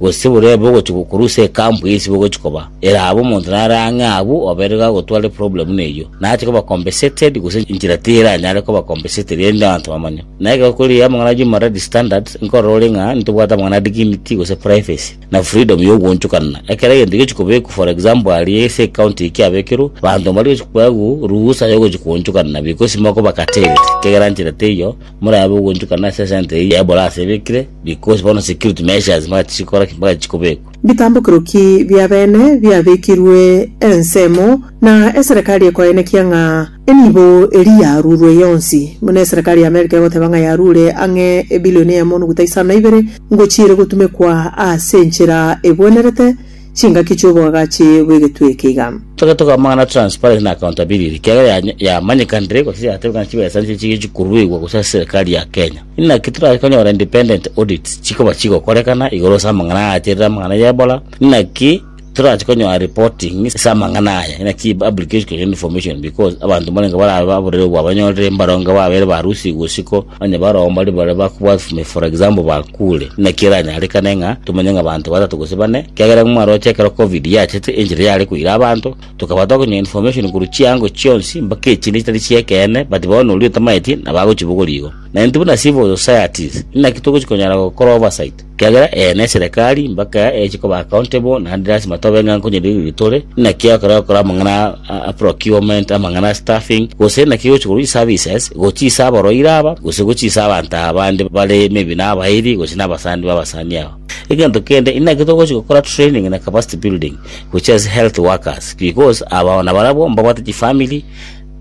gose borebe ogochia gokorwa ase ecamp ye isiko ogochia koba eraha bo omonto nare ang'e agwo obaire iga agotware problem buna eyio na ache koba compensated gose enchera teranyare koba compensated rende abanto bamanye na ekero kore amang'ana a human rights standards nkorora ore ng'a ntobwate amang'ana a dignity gose privacy na freedom ya ogwoonchokanana ekero egento egechi kobekwa for example aria ase ecounty eye kiabekirwe abanto mbari gochi koewa ruhusa ya ogochi koonchokanana because mokoba curtailed kegera nchera teiyo Morabe ogonchukana ase esenta eyio ya brass ebekire, because bono security measures mpaka chisikora ki? Mpaka chikobekwa. Bitambokero ki bi'abeene biabekirwe ensemo, na eserekari ekoenekia ng'a enibo eria yarurwe yonsi? Buna eserekari y'America egoteba ng'a yarure ang'e ebilioni emo nuguta isano na ibere ngochia ere gotumekwa ase enchera ebwenerete, Chingaki chi'oboagachi bw'egetwe eke iga. Togete kwamang'ana transparency na accountability ekiagera ya yamanyekanire gose yatebekana chibesanchire chiria chikoruegwa gose ase serikali ya Kenya. Inaki torabe konyora independent audits chikoba chigokorekana igoro ase amang'ana aacharire amang'ana y'ebora? Inaki torache konyora reporting ase amang'ana aya? Inaki publication of information because abanto mbarenge barabe baburire obwabanyorire mbaronge babeire barusigwe isiko Onye barabwo mbaria baria bakobwata ime, for example, bakure, naki eranyarekane ng'a tomenye ng'a abanto batato gose bane, ekiagera nigo mwaroche ekero covid yachete, enchera yare koira abanto, tokaba tokonyora information korwa chiango chionsi, mpaka echinde chitari chi'ekeene, but bono oria otamaeti nabo agochibogoria igo. Na intwe buna civil societies, inaki togochi konyara gokora oversight? Kiagera eye neserekari mbake echi koba accountable naende lasima tobe ng'a nkonyeririria tore, inaki ekero okora amang'ana a procurement, amang'ana a staffing, gose inaki gochi korwa chiservices gochia ase aboroire aba, gose gochia ase abanto aba bande bare maybe nabairi gose nabasani babasani aba. Egento kende inaki togochi gokora training na capacity building gochia ase health workers because aba nabarabwo mbabwate chifamiri,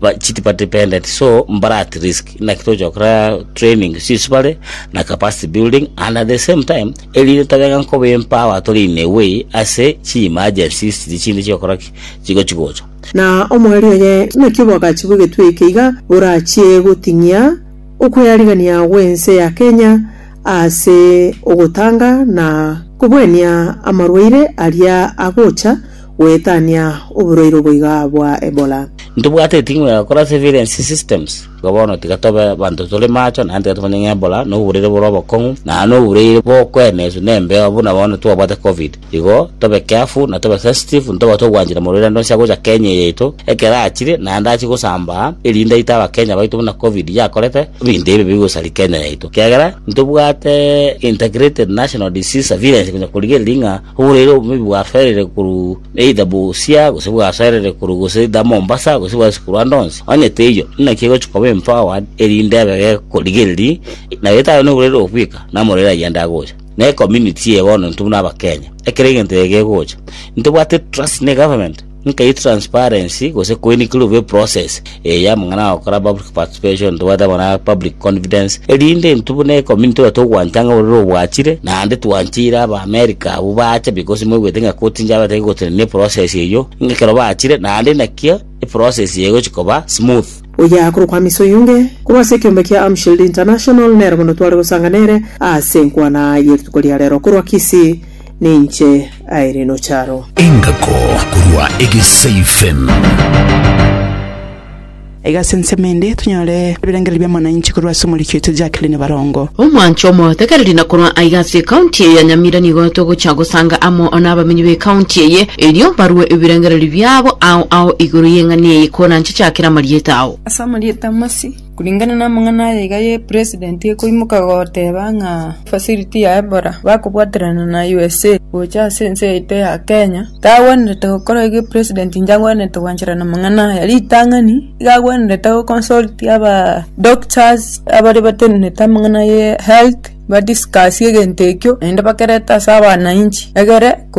ba chitipa dependent so mbare at risk naki tochokora training chisibare na capacity building and at the same time erinde tobenga nkoba empower tore in a way ase chi emergencies chiri chinde chigokora ki chigochi gocha Na omoerio oye naki obwagachigwe getwe eke iga borachie goting'ia okweyarigania gw'ense ya Kenya ase ogotanga na kobuania amarwaire aria agocha Goetania oborairo boiga bwa Ebola. Ntobwate eting'o ya gokora surveillance systems, igo bono tiga tobe abanto tore macho, naende tiga tomanye ng'a Ebola nobo borairo bore obokong'u, na nobo borairo bokweneswa nembeo buna bono twabwate Covid. Igo tobe careful na tobe sensitive ntobwate ogwanchera morwaerande onsi agocha Kenya eye yaito ekero achire naende achie gosambaa, erinde aite Abakenya baito buna Covid yakorete ebinto ebi bigosaria Kenya yaito. Ekiagera ntobwate integrated national disease surveillance konya korigereria ng'a. Oboreire obobe bwasoerire korwa either Busia, gose bwasoerire korwa gose either Mombasa, gose bwase korwa ande onsi, onye teiyo, naki egochia koba empowered, erinde abe gekorigereria, na gete aye noboreire obo bweka, namoreire ayio ande agocha. Na ecommunity eye bono intwe buna Abakenya, ekero egento eke kegocha, intobwate trust ne egovernment. Nkai transparency gose koini kere obe process eye y'amang'ana agokora public participation ntobwate amo na public confidence erinde intwe buna ecommunity iga togwancha ng'a ororo obwachire naende twancheire aba America abwo bacha because mwaigwete ng'a koti nchabatebia gotenenia eprocess eywo ng'a ekero bachire naende nakio eprocess eye egochi koba smooth. Oya korokwa Hamisa Oyunge, korwa ase ekeombe kia Amshield International, nere bono tware gosangana ere ase enkwana ye rituko ria rero korwa Kisii. Ninche Irene Ocharo. Engako korwa Egesaifen. Iga ase ensemo ende tonyore ebirengererio bia mwananchi korwa ase omoriki oito Jacqueline Barongo. Omwancho omotekereri na korwa aiga ase ecounty eye ya Nyamira nigo togocha gosanga amo nabamenyi becounty eye erio barue ebirengererio biabo ao ao igoro yeng'ana eye koranche chakera amarieta ao. Ase amarieta Masi. Koreng'ana namang'ana aya iga ye president ekoimoka goteba ng'a facility ya Ebola bakobwaterana na USA gocha ase ense yaito ya Kenya, iga agwenerete gokora iga president inche agwenerete gwanchera namang'ana aya. Ritang'ani iga agwenerete go consult aba doctors abare batenenete amang'ana ye health ba discuss egento ekio naende bakerete ase abananchi egere.